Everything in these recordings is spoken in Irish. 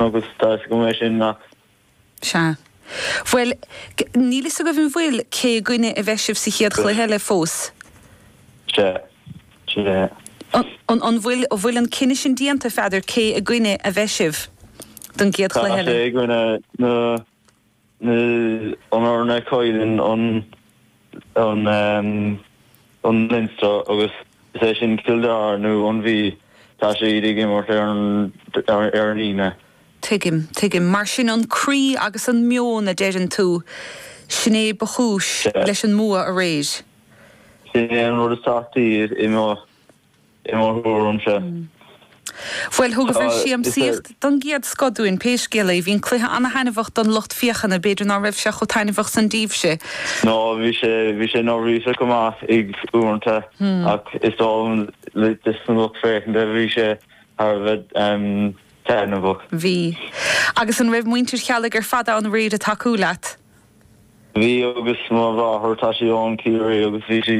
Agus tá fhios agam é sin nach. Sea. Bhuel, níl fhios agaibh an bhfuil, cé i gcoinne a bheidh sibh sa chéad chluiche eile fós? Sea. Sea. An, an bhfuil, an bhfuil an cinneadh sin déanta, Pheadair, cé i gcoinne a bheidh sibh don gcéad chluiche eile? Tá sé i gcoinne, na. nó an dara, cailleann an Leinster, agus is é sin Cill Dara nó an Mhí, tá siad ag imirt ar an Aoine. Tuigim, tuigim. Mar sin an croí agus an meon a deireann tú, sin é ba chúis leis an mbua aréir? Sin é an rud is tábhachtaí i mo. i mo thuairimse. Bhuel, thugabhair siamsaíocht don gcéad scoth dúinn pé scéal é. Bhí an cluiche ana-thaitneamhach don lucht féachana, b'fhéidir ná raibh sé chomh taitneamhach san daoibhse? Nó bhí sé, bhí sé neirbhíseach go maith ag uaireanta ach is dóigh liom le dos na lucht féachanta bhí sé thar a bheith taitneamhach. Bhí. Agus an raibh muintir Cheallaigh ar fad ann aréir a' tacú leat? Bhí agus mo mháthair tá sí ón Ciarraí agus bhí sí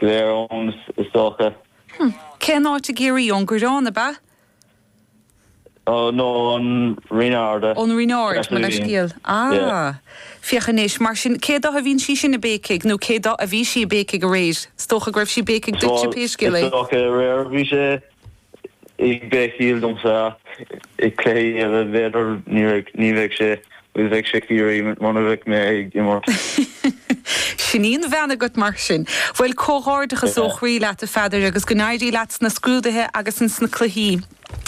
aréir ann, is dócha. Hmm. Cén áit i gCiarraí? Ón gCaorán, ab ea? Nó ón Rinn Ard? Ón Rinn Ard, mo leithscéal. Ah. Féach anois. Mar sin, cé do a bhíonn sí sin ag béicigh? Nó cé do a bhí sí ag béicigh aréir? Is dócha go raibh sí ag béicigh duitse pé scéal é. Is dócha aréir a bhí sí. Ag béiceach domsa ach i cluichí eile bhféadfadh, ní bheidh, ní bheidh sé, bhuel bheidh sé Ciarraí muna bheadh mé ag imirt. Sin í an bhean agam mar sin. Bhuel comhghairdeachas ó chroí leat a Pheadair agus go n-éirí leat sna scrúduithe agus ins na cluichí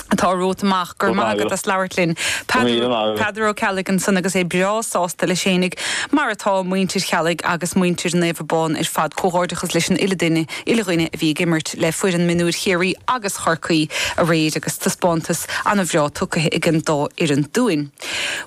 atá romhat amach. Go raibh maith agat as labhairt linn. Go raibh míle maith agat. Peadar Ó Ceallaigh ansan agus é breá sásta leis fhéinig mar atá muintir Cheallaigh agus muintir Naomh Abán ar fad. Comhghairdeachas leis an uile duine uile dhuine a bhí ag imirt le foireann mionúir Chiarraí agus Chorcaí aréir agus taispeántas ana bhreá tugtha ag an dá fhoireann dúinn.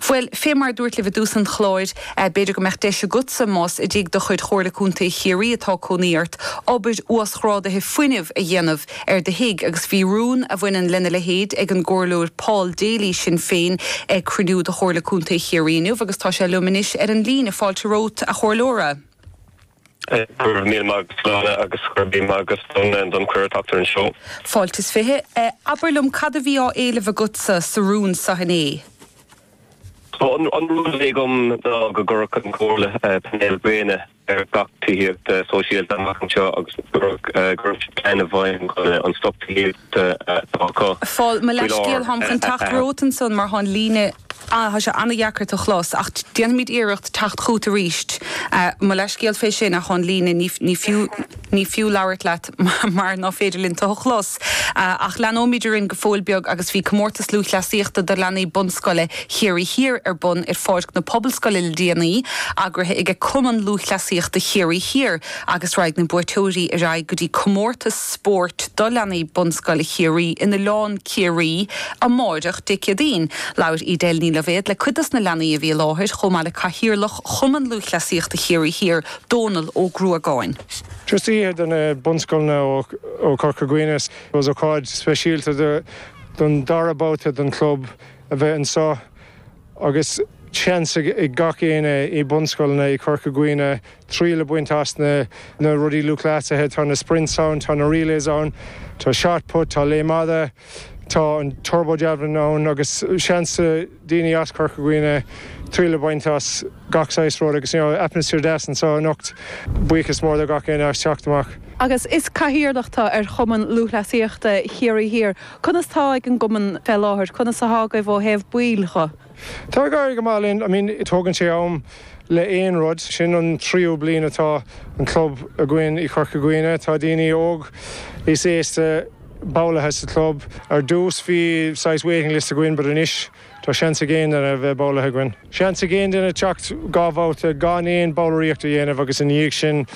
Bhuel, fé mar a dúrt libh i dtús an chláir, b'fhéidir go mbeadh deis agatsa, más i dtigh de chuid Chomhairle Contae Chiarraí atá cónaí ort, obair uasghrádaithe fuinnimh a dhéanamh ar do thigh agus bhí rún a bhaineann lena leithéid ag an gComhairleoir Paul Daly, Sinn Féin, ag cruinniú de Chomhairle Contae Chiarraí inniu agus tá sé linn anois ar an líne. Fáilte romhat, a Chomhairleoir. Go raibh míle maith agat a Shláine agus go raibh míle maith agat don, don chuireadh teacht ar an seó. Fáilte is fiche. Abair liom cad a bhí á éileamh agatsa sa rún so inné? So an rún a bhí agam ná go gcuirfeadh an Comhairle painéal gréine ar gach tithíocht sóisialta amach anseo agus go gcuirfeadh siad plean i bhfeidhm chun an stoc tithíochta atá acu fáil, mo leithscéal, lár táim chun teacht romhat ansan mar tá an líne, tá sé an-dheacair tú a chlos ach déanfaimid iarracht teacht chugat arís. Mo leithscéal fé sin ach tá an líne, ní, ní fiú, ní fiú labhairt leat mar ná féidir linn tu a chlos. Ach leanóimid orainn go fóill beag agus bhí Comórtas Lúthchleasaíochta do Leanaí Bunscoile Chiarraí Thiar ar bun ar pháirc na Pobalscoile le déanaí, eagraithe aige Cumann Lúthchleasaíochta Chiarraí Thiar. agus raghaidh na buaiteoirí ar aghaidh go dtí comórtas spóirt do leanaí Bunscoile Chiarraí in Oileán Ciarraí amáireach, Dé Céadaoin. Labhair Edel Ní Loibhéad le cuid dos na leanaí a bhí i láthair, chomh maith le Cathaoirleach Chumann Lúthchleasaíochta Chiarraí Thiar, Dónal Ó Gruagáin. Just oíche do na bunscoileanna ó Chorca Dhuibhne. Is ócáid speisialta don dara babhta don chlub a bheith anseo agus seans ag gach éinne i bunscoileanna i Chorca Dhuibhne triail a bhaint as na rudaí lúthchleasaithe. Tá na sprints ann, tá na relays ann, tá shot put, tá léim fhada, tá an turbo javelin ann agus seans ag daoine as Corca Dhuibhne triail a bhaint as gach saghas rud agus atmaisféar deas anseo anocht. Buíochas mór do gach éinne as teacht amach. Agus is cathaoirleach tu ar Chumann Lúthchleasaíochta Chiarraí Thiar, conas tá ag an gcumann fé láthair? Conas athá agaibh ó thaobh baill dho? Tá ag éirí go maith linn. I mean tógann sé am le aon rud. Sin an tríú bliain atá an club againn i Chorca Dhuibhne. Tá daoine óg is aosta ballaithe sa chlub. Ar dtús bhí saghas waiting list againn but anois tá seans ag aon duine bheith ballaithe againn. Seans ag aon duine teacht dhá bhabhta gan aon ballraíocht a dhéanamh agus ina dhiaidh sin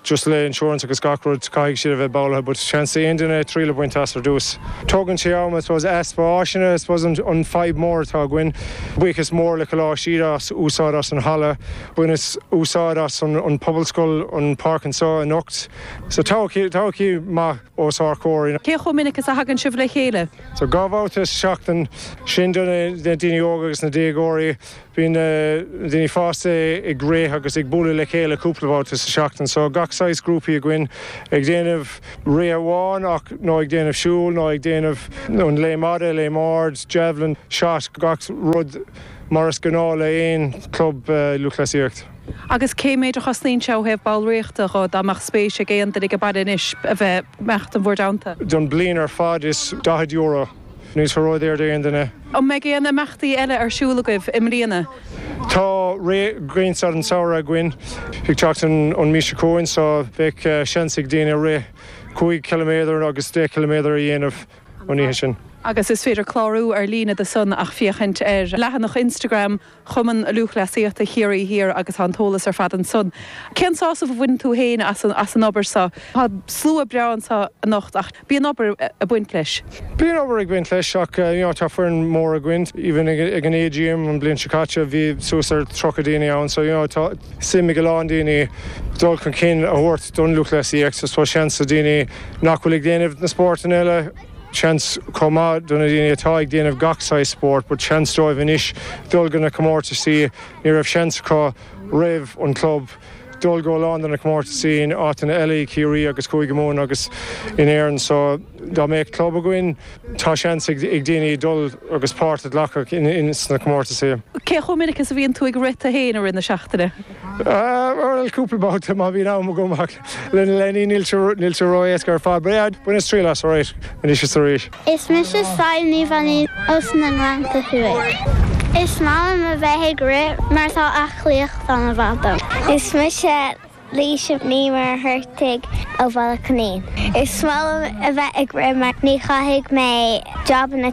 just le insurance agus gach rud caithfidh siad a bheith ballaithe but seans ag aon duine triail a bhaint as ar dtús. Tógann sé am I suppose. Easpa áiseanna I suppose an fadhb mór atá againn. Buíochas mór le Coláiste Íde as úsáid as an halla. Bhaineas úsáid as an pobalscoil an páirc anseo anocht. So todhchaí maith os ár comhair. Cé chomh minic is a thagann sibh le chéile? So dhá bhabhta sa seachtain. Sin do na daoine óga agus na déagóirí. Bíonn na daoine fásta ag rith agus ag bualadh le chéile cúpla babhta sa tseachtain. So gach saghas grúpaí againn ag déanamh rith amháin ach, nó ag déanamh siúl nó ag déanamh an léim fhada, léim ard, javelin, shot, gach rud mar is gnáth le aon club lúthchleasaíocht. Agus cé méid a chosnaíonn sé ó thaobh ballraíochta dho, dá mbeadh spéis ag aon duine aige baile anois a bheith, imeacht in bhur dteannta? Don bliain ar fad is daichead euro. Níl sé ródhaor d'aon duine. An mbeidh aon imeachtaí eile ar siúl agaibh i mbliana? Tá Rith Ghrianstad an tsamhraidh againn ag teacht an mhí seo chugainn so bheadh seans ag daoine rith cúig chiliméadar agus deich chiliméadar a dhéanamh an oíche sin. Agus is féidir clárú ar líne do san ach féachaint ar leathanach Instagram Chumann Lúthchleasaíochta Chiarraí Thiar agus tá an t-eolas ar fad ansan. Cén sásamh a bhaineann tú fhéin as an obair seo? Tá slua breá anseo anocht ach bíonn obair ag baint leis. Bíonn obair ag baint leis ach you know tá foireann mhór againn. Even ag an AGM an bhliain seo caite bhí suas ar 30 daoine ann so you know tá suim ag a lán daoine dul chun cinn a thabhairt don lúthchleasaíocht. I suppose seans do dhaoine nach bhfuil ag déanamh na spórtanna eile, Seans chomh maith do na daoine atá ag déanamh gach saghas spóirt, but seans dóibh anois dul go na comórtaisí, ní raibh seans acu roimh an club dul go a lán de na comórtaisí in áiteanna eile i gCiarraí agus Cúige Mumhan agus in Éirinn so anois go bhfuil club againn tá seans ag daoine dul agus páirt a ghlacadh in sna comórtaisí. Cé chomh minic is a bhíonn tú ag rith tú fhéin i rith na seachtaine? Bhuel cúpla babhta má bhíonn am agam ach. Le leanaí níl sé ró-éasca ar fad, bainim triail as arís anois is arís. Is mise Sadhbh Ní Mhainín ós na Gleannta Thuaidh. Is maith liom a bheith ag rith mar tá aclaíocht an-mhaith dom. Is mise Laoise Ní Mhuircheartaigh ó Bhaile Átha Coimín. Is maith liom a bheith ag rith mar ní chaithfidh mé jabanna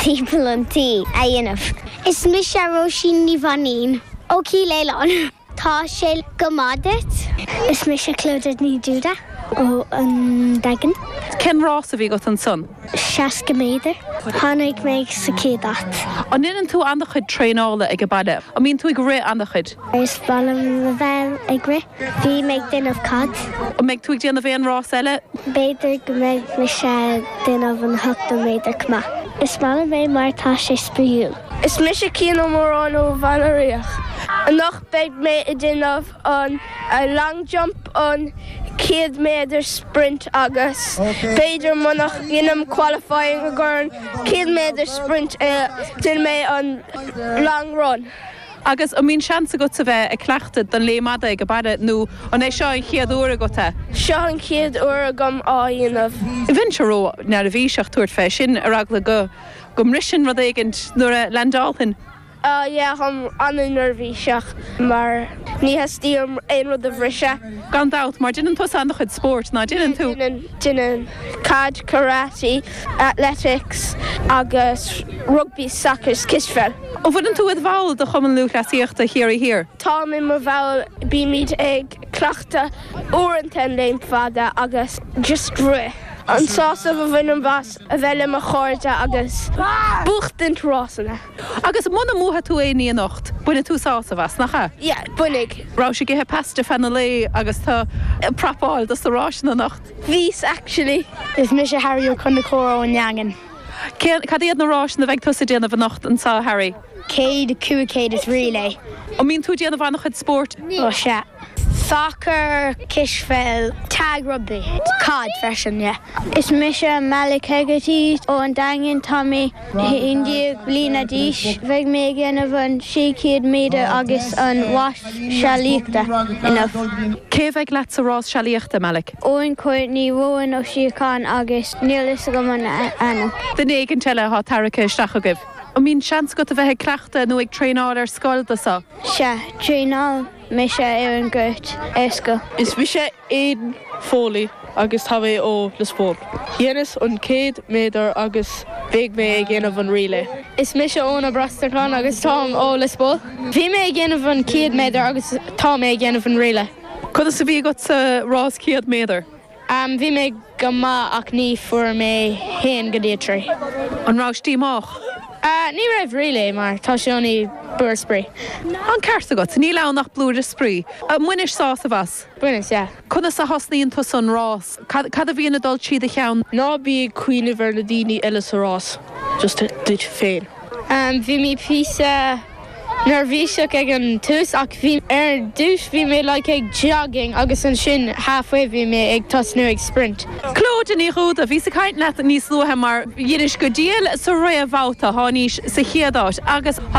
timpeall an tí a dhéanamh. Is mise Róisín Ní Mhainín ó Chill Aoláin. Tá sé go maith duit. Is mise Clodagh Ní Dhúda ón Daingean. Cén rás a bhí agat ansan? 60 méadar. Tháinig mé sa chéad áit. An ndéanann tú an-chuid traenála ag an baile? An mbíonn tú ag rith an-chuid? Is breá liom a bheith ag rith. Bím ag déanamh. Cad, an mbeidh tú ag déanamh aon rás eile? B'fhéidir go mbeidh mé ag déanamh an 80 méadar chomh maith. Is maith liom é mar tá sé spraíúil. Is mise Cian Ó Móráin ó Bheann a' Ríogh. Anocht beidh mé a' déanamh an long jump, an céad méadar sprint agus b'fhéidir munach ndeinim qualifying i gcomhair an céad méadar sprint déanfaidh mé an long run. Agus an mbíonn seans agat a bheith ag cleachtadh don léim fhada ag baile nó an é seo an chéad uair agat? Seo an chéad uair agam á dhéanamh. Bheinnse ró-neirbhíseach tabhairt fé sin ar eagla go. Go mbrisfinn rud éigint nuair a leaindeálfainn. Ah yeah, táim an-neirbhíseach mar ní theastaíonn uaim aon rud a bhriseadh. Gan dabht, mar deineann tusa an-chuid spóirt, ná deineann tú? Deineann. Cad? karate, athletics agus rugbaí, soccer is cispheil. An bhfuileann tú i do bhall de Chumann Lúthchleasaíochta Chiarraí Thiar? Táim i mo bhall, bímid ag cleachtadh uaireanta an léim fada agus just rith. An sásamh a bhainim as a bheith le mo chairde agus buachtaint rásanna. Agus muna mbuafaidh tú aon ní anocht, bainfidh tú sásamh as, nach ea? Yeah, bainfidh. An raibh sibh ag ithe pasta feadh an lae agus tú ag prapáil do sna ráiseanna anocht? Bhíos, actually. Is mise Harry Ó Conchúir ón Daingean. Cad iad na ráiseanna a bheidh tusa ag déanamh anocht anseo, Harry? Céad, cúig chéad is relay. An mbíonn tú ag déanamh an-chuid spóirt? Ó sea. Sacar, cispheil, tag rugbaí, caid freisin, yeah. Is mise Malick Hegarty ó An Daingean. Tá mé haon déag bliana d'aois. Bheidh mé ag déanamh an sé chéad méadar agus an rás sealaíochta inniu. Cé a bheidh leat sa rás sealaíochta, Malick? Eoin Courtney, Róan Ó Síocháin agus níl fhios agam an ainm. Duine éigint eile athá tarraigthe isteach agaibh? An mbíonn seans agat a bheith ag cleachtadh nó ag traenáil ar scoil do seo? Sea, traenáil mise ar an gcúirt ar scoil. Is mise Aidan Foley agus tá mé ó Lios Póil. Dheineas an 100 méadar agus beidh mé ag dhéanamh an relay. Is mise Eoin Ó Brosnacháin agus táim ó Lios Póil. Bhí mé ag dhéanamh an 100 méadar agus tá mé ag dhéanamh an relay. Conas a bhí agat sa rás 100 méadar? Bhí mé go maith ach ní fuair mé haon go dtí a trí. An rabhais díomách? Ní raibh really mar tá sé ann i blúire spraoi. An ceart agat. Níl ann ach blúire spraoi. Ar bhainis sásamh as? Bhaineas, yeah. Conas a thosnaíonn tusa an rás? Cad a bhíonn ag dul trí do cheann? Ná bí ag cuimhneamh ar na daoine eile sa rás, just duit féin. Bhí mé píosa. neirbhíseach ag an tús ach bhí, ar dtús bhí mé like ag jogging agus ansin halfway bhí mé ag tosnú ag sprint. Clodagh Ní Dhubhda, bhíos ag caint leat níos luaithe mar dheinis go diail sa réamhbhabhta thánaís sa chéad áit agus tá